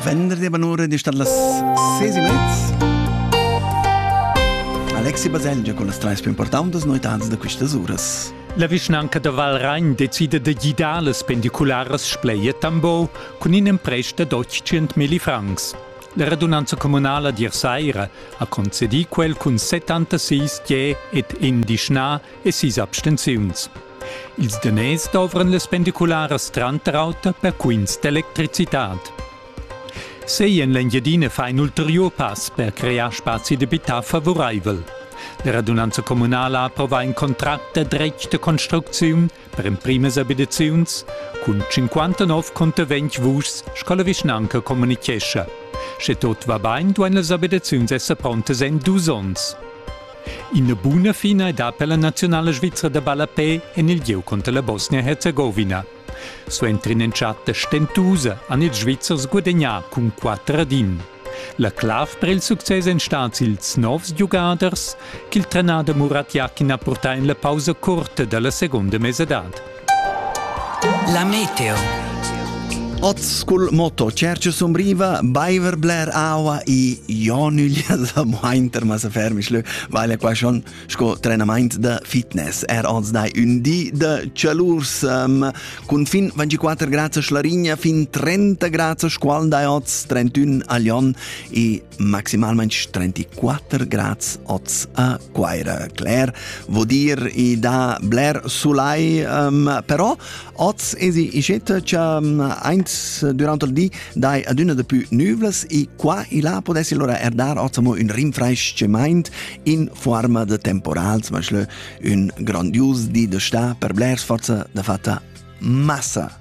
Venderdi bonora di star las ses e mezz. Alexi Baselgia con las treis più importanti noitans da questas uras. La vischnanca da Valragn decide da gidar las pendicularas spleie Tambo cun in emprest da 100.000 francs. La radunanza comunala di Saira ha concedì quel cun 76 je et in dischna e sis abstenziuns. Ils daners dovran las pendicularas tranter auter per quints d'electricitad. Sei en l'Engiadina fa in ulteriur pass per crear spazi d'abitar favoraivel. La radunanza communala approva in contract da dretg da construcziun per emprimas abitaziuns cun 59 contervegns vuschs, sco la vischnanca communichescha. Sche tot va bain, duain las abitaziuns esser prontas en dus onns. Ina buna fina è da per la nazionala svizra da ballapè en il gieu conter la Bosnia-Herzegovina. Suenter in'entschatta stentusa han ils Svizzers gudagnà cun 4 ad 1. La clav per il success èn stads ils novs giugaders ch'il trenader Murat Yakin ha purtà en la pausa curta da la segunda mesadad. La meteo. Oz cul moto Cercio Sombriva, baiver bler aua i jo nüglia sa mointer ma sa fermisch lö, weil er qua schon sco trenament de fitness. Er oz dai ün di de cialurs um, cun fin 24 grads a Schlarigna, fin 30 grads a Squal dai oz, 31 a Lyon e maximalmente 34 grads oz a Quaira. Clair vuol dir i da bler sulai, um, però oz esi ischetta cha um, eins durante il di dai adüna de più nüvles e qua e là podessi allora er dar oz amo un rinfraischament in forma de temporal, zum Beispiel un grandios di de sta per blers forza de fatta massa